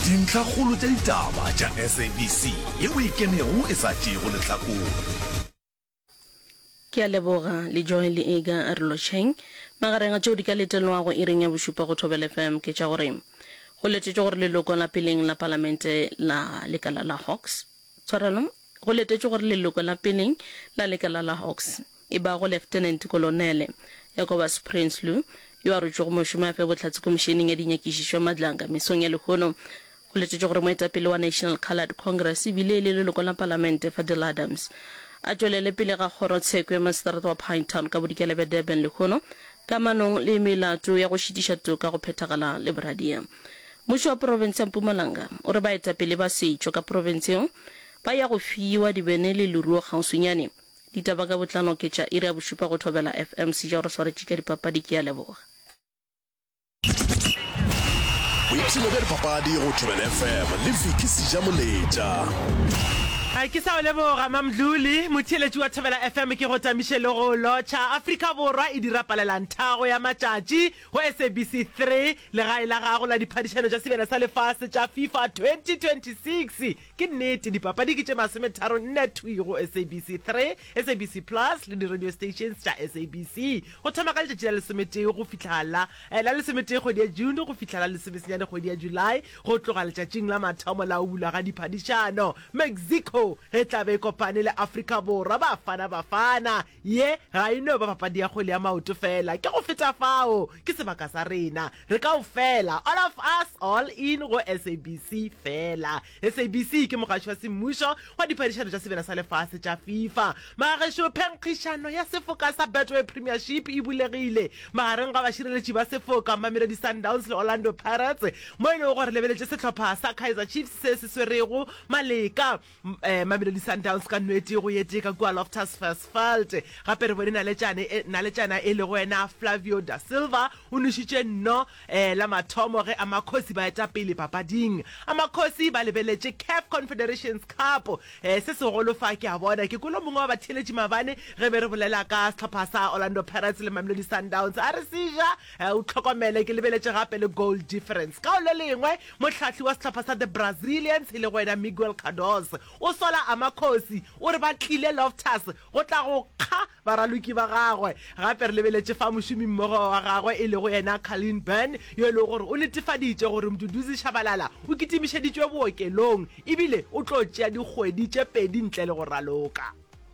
Dintlhakgolo tša ditaba tša SABC ye o e kenego e sa tšeego lehlakore. Ke a leboga, Lejoy le Ega Arolotšheng. Magareng a tšeo di ka letelwago iring ya bošupa go Thobela FM ke tša gore go letetšwe gore leloko la peleng la Palamente la lekala la Hawks, Tshwarelo, Go letetšwe gore leloko la peleng la lekala la Hawks e bago Lieutenant Kolonele Jacobus Prinsloo, yo a rotšwego mošomo a fe bohlatse Komišeneng ya Dinyakišišo Madlanga mesong ya lehono. Go letetšwe gore moetapele wa National Coloured Congress e bile e le leloko la Palamente Fadil Adams a tšwelele pele ga kgoro tsheko ya Maseterata wa Pinetown ka Bodikela bja Durban lehono kamanong le melato ya go šitiša toka go phethagala le boradia Mmušo wa profense ya Mpumalanga o re baetapele ba setšo ka profense yeo ba ya go fiwa dibene le leruo kgauswinyane. Ditaba ka botlalo ke tša iri ya bošupa go Thobela FM. Sejaro re swaretše tša dipapadi, ke a leboga. Boipshino bja dipapadi go Thobela FM le Vicky Sejamoletša. Ke sa o leboga Mamdluli. Motheeletši wa Thobela FM ke go tamiše le go o lotšha. Afrika Borwa e dira palelanthago ya matšatši. Go SABC 3, Legae la gago la diphadišano tša sebele sa lefase tša FIFA 2026. Ke nnete, dipapadi ke tše masometharo nne thwi go SABC 3, SABC Plus le di-radio stations tša SABC, go thoma ka letšatši la lesometee go fihla la la lesometee kgwedi ya June go fihla la lesomesenyane kgwedi ya July, go tloga letšatšing la mathomo la go bulwa ga diphadišano. Mexico e tla be e kopane le Afrika Borwa, Bafana Bafana. Ye ga e no ba papadi ya kgwele ya maoto feela. Ke go feta fao. Ke sebaka sa rena. Re kaofela, all of us, all in go SABC feela. SABC ke mogatši wa semmušo wa diphadišano tša sebjana sa lefase tša FIFA. Bagešo, phenkgišano ya sefoka sa Betway Premiership e bulegile magareng ga bašireletši ba sefoka Mamelodi Sundowns le Orlando Pirates, mo e lego gore lebeletše sehlopha sa Kaizer Chiefs se se swerego maleka. Mamelodi Sundowns ka nwetee go yetee ka kua Loftus Versfeld. Gape re bone naletšane e, naletšana e lego yena Flavio da Silva o nwešitše nno la mathomo ge Amakhosi ba eta pele papading. Amakhosi ba lebeletše CAF Confederations Cup. Se segolo fa ke a bona ke kolo mongwe wa batheeletši mabane ge be re bolela ka sehlopha sa Orlando Pirates le Mamelodi Sundowns a re se ja O hlokomele, ke lebeletše gape le goal difference. Ka go le lengwe, mohlahli wa sehlopha sa The Brazilians, e lego yena Miguel Cardoso, o sola Amakhosi, o re ba tlile Loftus go tla go kga baraloki ba gagwe. Gape re lebeletše fa mošomimmogo wa gagwe e lego yena Carleen Byrne, yo e lego gore o netefaditše gore Mduduzi Shabalala o kitimišeditšwe bookelong ebile o tlo tšea dikgwedi tše pedi ntle le go raloka.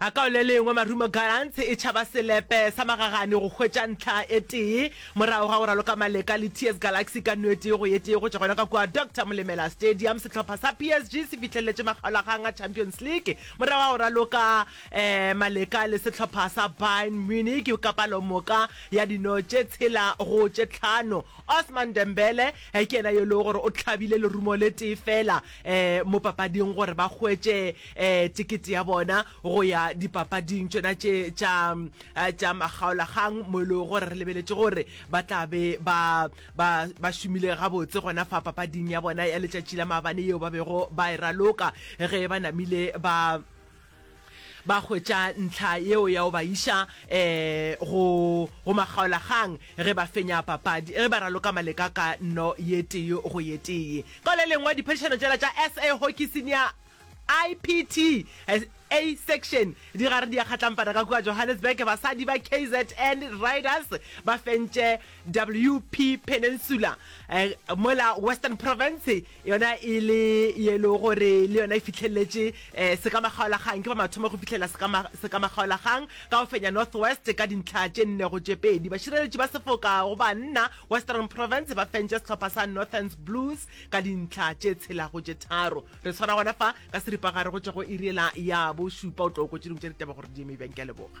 A ka o le lengwe Marumo Gallants e tšhaba selepe sa magagane go hwetša ntlha e tee morago ga go raloka maleka le TS Galaxy ka no e tee go ye tee go tšwa gona ka kua Doctor Molemela Stadium. Sehlopha sa PSG se fihlelletše makgaolakgang a Champions League morago ga go raloka um maleka le sehlopha sa Bayern Munich ka palomoka ya dino tše tshela go tše tlhano. Ousmane Dembele ke yena yo e lego gore o hlabile lerumo le tee feela mo papading gore ba hwetše tikete ya bona go ya dipapading tšona tše tša tša makgaolakgang mo e lego gore re lebeletše gore ba tla be ba ba ba šomile gabotse gona fa papading ya bona ya letšatši la maabane yeo ba bego ba e raloka ge ba namile ba ba hwetša ntlha yeo ya go ba iša um go go makgaolakgang ge ba fenya papadi ge ba raloka maleka ka no ye tee go ye tee. Ka le lengwe, diphadišano tšela tša SA Hockey Senior IPT A Section di gare di a kgatlampana ka kua Johannesburg. Basadi ba KZN Riders ba fentše WP Peninsula um mola Western Province yona e le yelo gore le yona e fihlelletše sekamagaolagang ke ba mathomo go fihlela sekamagaolagang ka go fenya North West ka dintlha tše nne go tše pedi. Bašireletši ba sefoka go banna Western Province ba fentše sehlopha sa Northern's Blues ka dintlha tše tshela go tše tharo. Re swara gona fa ka seripagare go tšwa go iri yela ya bošupa. O tlo kwa tše dingwe tša ditaba gore di eme bjang. Ke a leboga.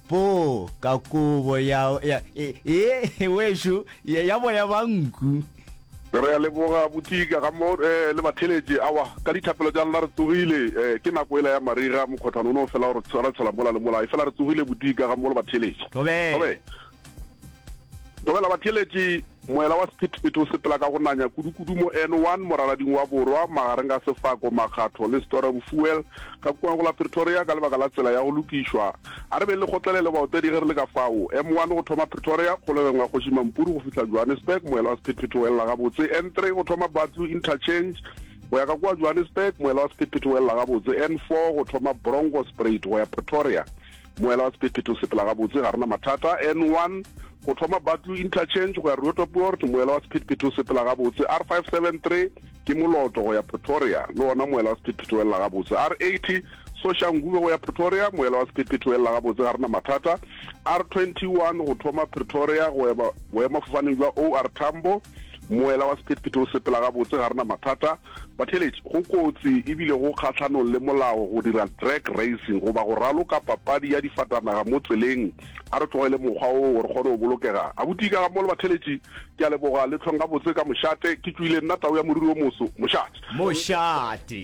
Po ka kobo ya, ya e, e, wešo ya, ya boya ba nku. Re a leboga abuti ka ga mo eh, le batheletše awa ka dithapelo tša lena re tsogile eh, ke nako ela ya mariga mokgothano o ne o fela gore tshwara tshela mola le mola e fela re tsogile buti ka ga mo le batheletše Thobela. Thobela batheletše Moela wa sephethephethe o sepela ka go nanya kudukudu mo N1 moralading wa borwa magareng ga Sefako, Makgatho le Stora Bofuel ka kua go la Pretoria ka lebaka la tsela ya go lokišwa. A re beng le kgotlele le baotedi ge re le ka fao. M1 go thoma Pretoria, Kgolegeng wa Kgoši Mampuru go fihla Johannesburg, moela wa sephethephethe o elela gabotse. N3 go thoma Batlu Interchange go ya ka kua Johannesburg, moela wa sephethephethe o elela gabotse. N4 go thoma Bronkospruit go ya Pretoria. Moela wa Sephetephete o sepela gabotse, ga re na mathata. N1, Go thoma Batlu Interchange go ya Roodepoort, moela wa Sephetephete o sepela gabotse. R573, Ke moloto go ya Pretoria, le wona moela wa Sephetephete o elela gabotse. R80, Soshanguve go ya Pretoria, moela wa Sephetephete o elela gabotse, ga re na mathata. R21, Go thoma Pretoria go ya boemafofaneng jwa OR Tambo, moela wa Sephetephete o sepela gabotse, ga re na mathata. Batheeletši, go kotsi e bile go kgahlanong le molao go dira drag racing goba go raloka papadi ya difatanaga mo tseleng. A re tlogele mokgwa wo gore kgone go bolokega. Abuti ka ga mo le batheeletši, ke a leboga le tlhong gabotse ka mošate. Ke tšoile nna tau ya moriri o moso, mošate. Mošate.